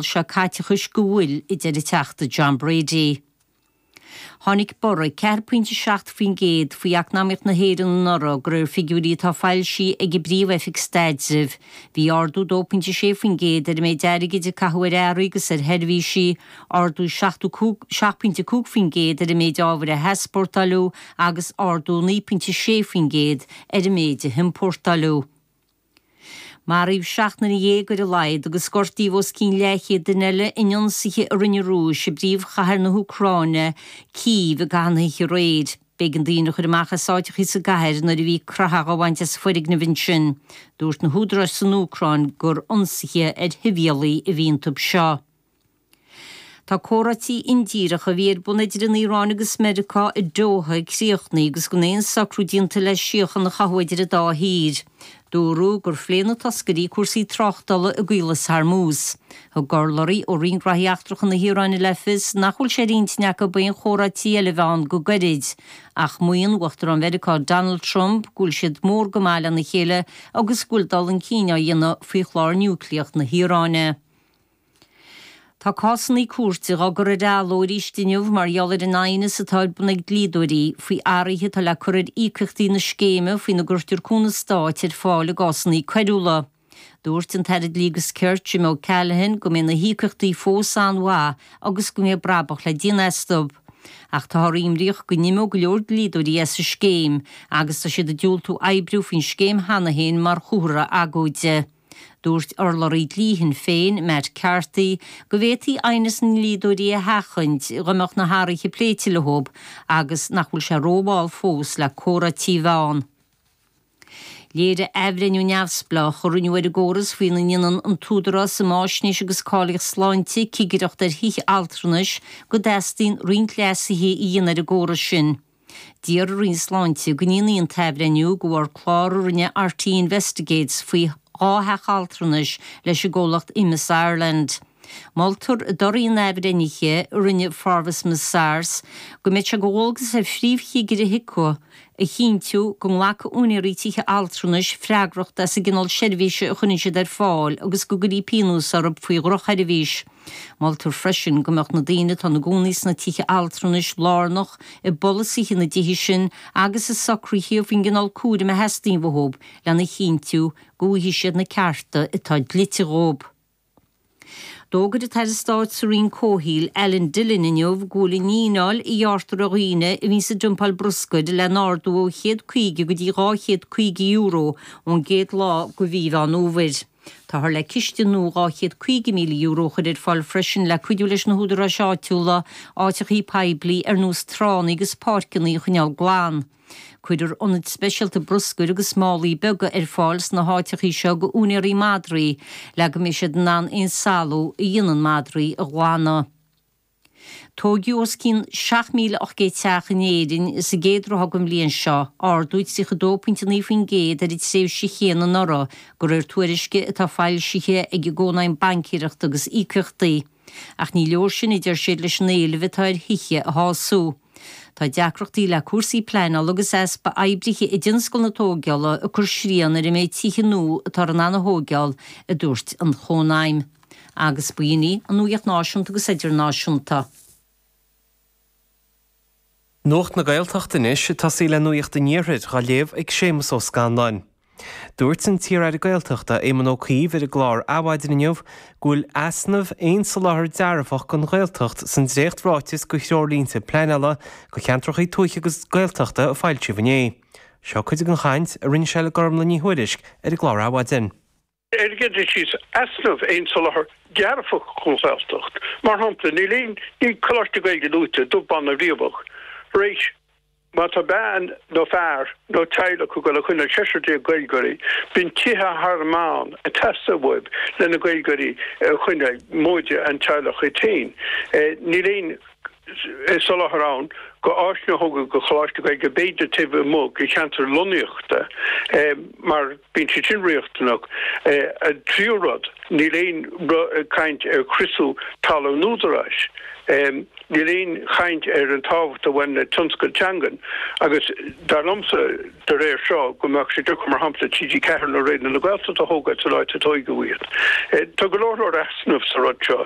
seo caiteachais go bhfuil idir an Teachta John Brady. Tháinig borradh 4.7% faoi eacnamaíocht na hÉireann anuraidh de réir figiúirí atá foilsí ag an bPríomh-Oifig Staidrimh. Bhí ardú 2.6% ar an méid airgid a caitheadh ar earraí agus ar sheirbhísí, ardú 7.5% ar an méid ábhair a heaspórtáileadh agus ardú 9.6% ar an méid a hiompórtáileadh. Maraíodh seacht nduine dhéag ar a laghad agus gortaíodh os cionn leathchéad duine eile in ionsaithe a rinne an Rúis i bpríomhchathair na hÚcráine, Cív, i gcaitheamh na hoíche aréir. B'éigean daoine a chur amach as áiteachaí sa gcathair nuair a bhí croitheadh á bhaint as foirgnimh ansin. Dúirt na húdaráis san Úcráin gur ionsaithe ar shibhialaigh a bhí iontu seo. Tá comhráití indíreach a bhí ar bun idir an Iaráin agus Meiriceá i Doha críochnaí agus gan aon socrú déanta le síochan a chothú idir an dá thír. Dúradh gur phléigh na toscairí cúrsaí tráchtala i gCaolas Harmuz. Thug urlabhraí ó Roinn Gnóthaí Eachtracha na hIaráine le fios nach bhfuil sé ar intinn acu aon chomhráití eile a bheith ann go gairid. Ach maíonn Uachtarán Mheiriceá Donald Trump go bhfuil siad mór go maith lena chéile agus go bhfuil dul chun cinn á dhéanamh faoi chlár núicléach na hIaráine. Tá cásannaí cúirte dhá gcur ar athló aríst inniu mar gheall ar an aighneas atá ar bun ag dlíodóirí faoi athraithe atá le cur ar íocaíochtaí na scéime faoina gcuirtear cúnamh stáit ar fáil i gcásannaí coiriúla. Dúirt an tAire Dlí agus Cirt, Jim O Callaghan go mbeidh na híocaíochtaí fós an-mhaith agus go mbeidh brabach le déanamh astu. Ach táthar imníoch go n-imeoidh go leor dlíodóirí as an scéim agus tá siad ag diúltú oibriú faoin scéim cheana féin mar chomhartha agóide. Dúirt urlabhraí dlí Shinn Féin, Matt Carthy, go bhféadfaí aighneas na ndlíodóirí a sheachaint dá mbeadh na hathruithe pléite leo agus nach bhfuil sé rómhall fós le comhráití a bheith ann Léirigh athbhreithniú neamhspleách a rinneadh ar an gcóras faoina ndéanann an tÚdarás um Fháisnéis agus Cáilíocht Sláinte cigireacht ar thithe altranais go dteastaíonn roinnt leasuithe a dhéanamh ar an gcóras sin. D'iarr an Roinn Sláinte go ndéanfaí an t-athbhreithniú go bharr clár a rinne RTÉ Investigates faoi dhá theach altranais leis an gcomhlacht Emeis Ireland. Moltar i dtorthaí an athbhreithnithe a rinne Forvis Mazars go mbeadh sé de dhualgas ar phríomhchigire HIQA a chinntiú go nglacfaidh úinéirí tithe altranais freagracht as an gcineál seirbhíse a chuireann siad ar fáil agus go gcuirfí pionós orthu faoi dhrochsheirbhís. Moltar freisin go mbeadh na daoine atá ina gcónaí sna tithe altranais lárnach i bpolasaithe na dtithe sin agus i socruithe faoin gcineál cúraim a theastaíonn uathub lena chinntiú go bhfaighidh siad na cearta atá dlite dhóib. D'fhógair an tAire Stáit sa Roinn Comhshaoil, Alan Dillon inniu go bhfuil an fhíneáil a ghearrtar ar dhaoine a bhíonns ag dumpáil bruscair lena ardú ó chéad caoga go dtí dhá chéad caoga euro ón gcéad lá de Mhí Mheán Fhómhair. Táthar le ciste nua €250,000 a chur ar fáil freisin le cuidiú leis na húdaráis áitiúla, áiteachaí poiblí ar nós tránna agus páirceanna a choinneáil glan. Cuirfear ionaid speisialta bruscair agus málaí beaga ar fáil sna háiteachaí seo go úinéirí madraí le go mbeidh siad in ann aon salú a dhéanann madraí a ghlanadh. Tóigeadh os cionn 7,800 teach in Éirinn sa gcéad ráithe den bhliain seo, ardú 32.9% ar an tréimhse chéanna anuraidh, go réir tuairisce atá foilsithe ag an gCónaidhm Baincéireachta agus Íocaíochtaí. Ach ní leor sin, a deir siad, leis an éileamh atá ar thithe a shású. Tá deacrachtaí le cúrsaí pleanála agus easpa oibrithe i dtionscal na tógála ag cur srian ar an méid tithe nua atá arna dtóigeáil, a dúirt an Chónaidhm. Agus ba shin í an nuaíocht náisiúnta agus idirnáisiúnta. Nuacht na Gaeltacht anois ag tosaí le nuaíocht an Iarthair dhá léamh ag Séamus Ó Scanláin. Dúirt an t-iar-aire Gaeltachta Éamon Ó Cuív ar an gclár Adhmhaidin inniu go bhfuil easnamh aon soláthar dearfach dhon Ghaeltacht san dréachtráiteas dho threoirlínte pleanála dho cheantrachaí tuaithe agus Gaeltachta a foilsíodh inné. Seo cuid den chaint a rinne sé le Gormlaith Ní Thuairisg ar an gclár Adhmhaidin. airgeadais is easnamh aon soláthar dearfach don Ghaeltacht. Mar shampla, níl aon ní coláistí Gaeilge luaite, dubh, bán ná riabhach. Raight, má tá bean nó fear nó teaghlach ag dul a choinneáil seisear déag Gaeilgeoirí, bíonn tithe thar meán ag teastáil uathu leis na Gaeilgeoirí a choinneáil, móide an teaghlach iad féin. Níl aon. soláthar ann dho áiseanna a thógáil dho choláistí Gaeilge b'fhéidir taobh amuigh de cheantar lonnaíochta mar bíonn siad sin riachtanach. An tríú rud, níl aon chaint ar chriosú talamh an Údaráis. Níl aon chaint ar an tábhacht a bhaineann le tionscail teangan agus dar liomsa de réir seo go mbeadh sé deacair mar shampla TG4 nó Raidió na Gaeltachta a thógáil san áit a tóigeadh iad. Tá go leor leor easnamh sa rud seo.